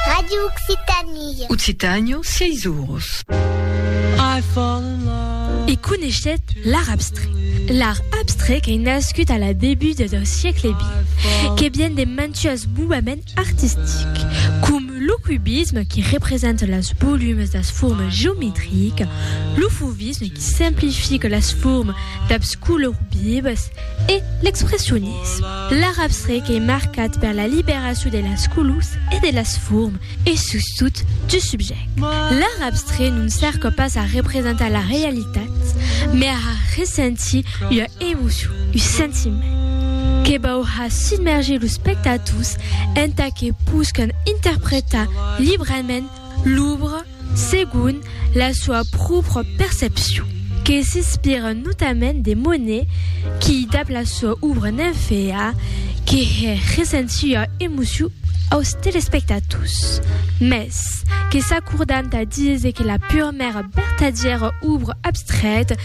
Radio Occitanie. Occitània, 6 oros. E coneishèt l'art abstrè. L'art abstrè qu'ei nascut a la debuta dau siecle vint, que vien de mantuás movements artistics, com lo cubisme qui representa las volumes das formas geometricas, lo fauvisme qui simplifica las formas dabs colors vivas e l'expressionisme. L'arabstre qu'ei marcat per la liberacion de las colors e de las formes e sustot du subject. L'arabstre non cerca pas a representar la realitat, mai a har ressentir ua emocion, un sentiment, que vau har submerger los spectators entà que poscan interpretar librament l'òbra. segon la soa pròpra percepcion, que s'inspira notament de Monet qui, dab la soa òbra Nymphéa, que hè recent sua emocion aus telespectators, mès que s'acordant a díser que la purmèra vertadièra òbra abstrèta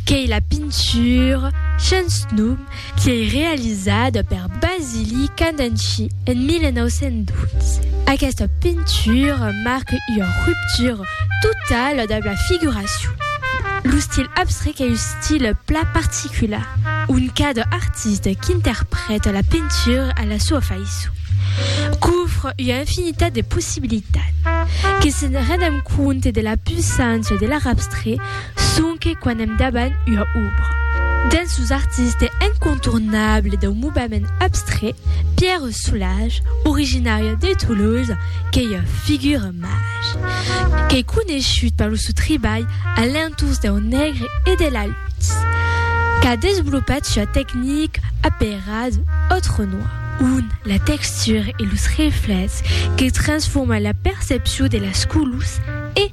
qu'ei la pintura, sens nom, Qu'ei realizada per Basili Candanci en 1912. Aquesta pintura marque ua ruptura totala dab la figuracion. Lo stil abstrec ei un stil plan particular, ont cada artista qu'interprèta la pintura a la soa faiçon, qu'ofre ua infinitat de possibilitats. Que se'n rendam compte de la puissància de l'art abstrec, sonque quan èm davant ua òbra. Dens los artistes incontournables dau movement abstrait, Pierre Soulages, originari de Toulouse, qu'ei ua figura màger, qu'ei coneishut per lo sò tribalh a l'entorn dau negre e de la lutz, qu'a desvolopat sua tecnica aperada Autre Noir, ont la textura e los reflèchs que transforma la percepcion de las colors e